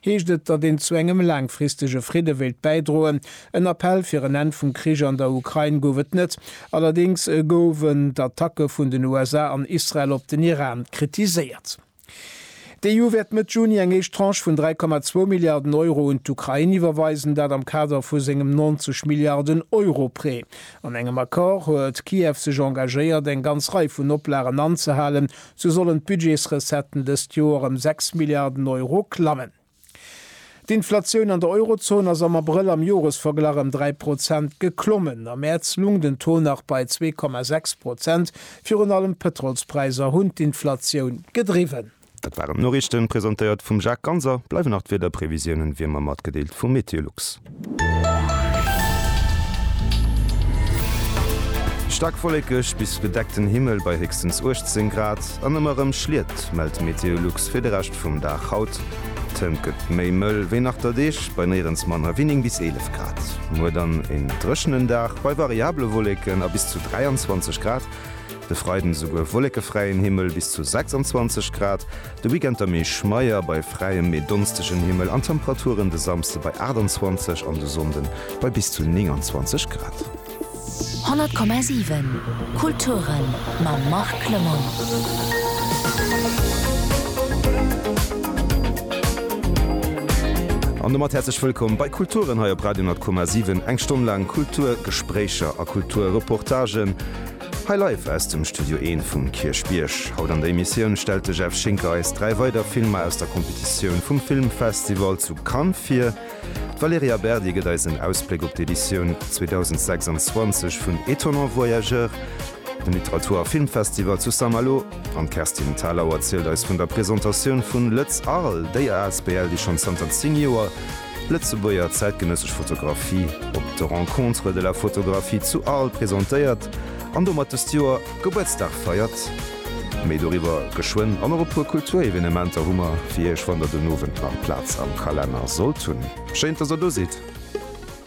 Heescht et, datt een zu engem laangfristege Fridde wéilt bäidroen? En Appell fir en Enn vum Krich an der Ukrain gouf et net. Allerdéngs gouwen d'Attacke vun den USA an Israel op den Iran kritiséiert. D'EU wäert Mëtt Juni eng éischt Tranche vun 3,2 Milliarden Euro un d'Ukrain iwwerweisen, dat am Kader vu sengem 90 Milliarden Euro Prêt. An engem Accord huet Kiew sech engagéiert, eng ganz Rei vun Oplagen anzehalen, Sou sollen d'Budgetsrecetten dëst Joer ëm 6 Milliarden Euro klammen. D'Inflatioun an der Eurozon ass am Abrëll am Joresverglach ëm 3 Prozent geklommen. Am Mäerz lung den Taux nach bei 2,6 Prozent. Virun allem d'Pëtrolspräisser hunn d'Inflatioun gedriwwen. Dat waren d'Noriichten, presentéiert vum Jacques Ganser. Bleiwen nach d'Wiederprevisiounen, wéi ëmmer matgedeelt vum Meteolux. Staark wollekeg bis bedeckten Himmel bei héchstens 18 Grad an ëmmer erëm Schliet, mellt Meteolux fir de Rescht vum Dag haut. D'Hënt gëtt méi mëll wéi nach der Deeg bei néierens manner wéi 9 bis 11 Grad. Muer dann een dréchenen Dag bei variable Wolleken a bis zu 23 Grad. De Freiden esouguer wollekefräien Himmel bis zu 26 Grad. De Weekend da méi schmeier bei fräiem, mee donstegen Himmel an Temperaturen de Samsde bei 28 an de Sonnden bei bis zu 29 Grad. 100,7 Kulturen mam Marc Clement. An domat häerzlech wëllkomm bei Kulturen hei op Radio 100,7. Eng Stonn laang Kulturgespréicher a Kulturreportagen Hei live aus dem Studio Een vum Kierchbierg. Haut an der Emissioun stellt de Jeff Schinker eis dräi weider Filmer aus der Competitioun vum Filmfestival zu Cannes vir. D'Valerija Berdi gëtt eis en Ausbléck op d'Editioun 2026 vun Étonnants Voyageurs, dem Literatur a Filmfestival zu Saint-Malo. An d'Kerstin Thalau erzielt eis vun der Presentatioun vun Lëtz Arles, déi asbl, déi schonn zanter 10 Joer, Lëtzebuerger zäitgenëssesch Fotografie op de Rencontres de la photographie zu Arles presentéiert an domat dëst Joer Gebuertsdag feiert. Méi doriwwer geschwënn an och e puer Kulturevenementer hu mer fir Iech, wann der den Owend nach Plaz am Kalenner sollt hunn. Schéin, dass der do sidd!